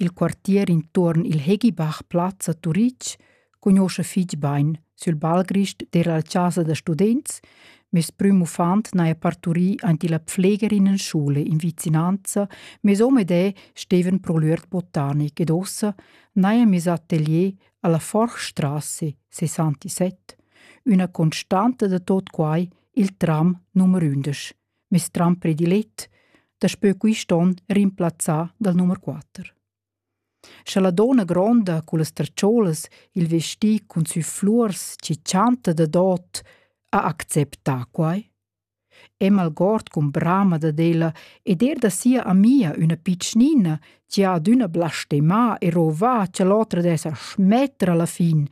Il quartier intuorn il Hegibach-plaz a Turitg cugnuoscha fich bain. Sül Balgrist d'eira la chasa da students, meis prüm uffant n'haja parturì aint illa pfleger in ün schule in vicinanza, meis hom ed eu stevan pro l'üert botanic ed uossa n'haja miss atelier a la Forchstrasse 67, üna constanta da tot quai, il tram numer ündesch. mistran predilet, daspö quist on rimplazzà dal numer 4. Scha la donna gronda con las tracciolas il vesti cun sü fluors chi chanta da dot ha acceptà quai? Emma algord cun brama dad ella ed er da sia amia üna pitschnina chi ha adüna blastemà e rovà cha l'otra dessa schmetter alla fin,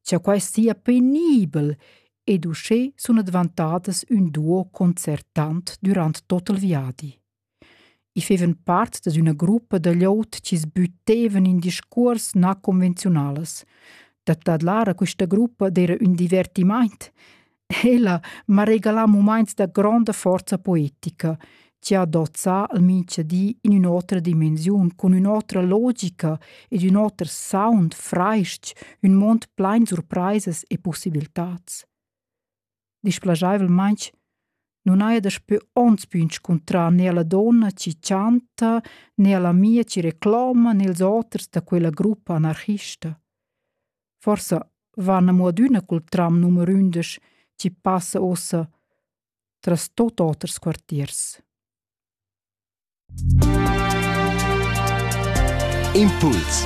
cha quai sia penibel ed uschè sun dvantadas ün duo concertant dürant tot il viadi. I fevan part da üna gruppa da glieud chi sbüttevan in discuors na convenziunalas. Da tadlar a quista gruppa d'eira ün divertimaint. Ella m'ha regalà mumaints da gronda forza poetica che ha dozà al mincha di in ün'otra dimensiun, cun ün'otra logica ed ün oter sound frais-ch, ün mond plain surpraisas e pussibiltats. Displagiaivelmaing non haja daspö ons più inscuntrà né alla donna chi chanta, né all'amia chi recloma, nels oters da quella gruppa anarchista. Forsa van amo adüna cul tram numer ündesch chi passa uossa tras tot oters quartiers. Impuls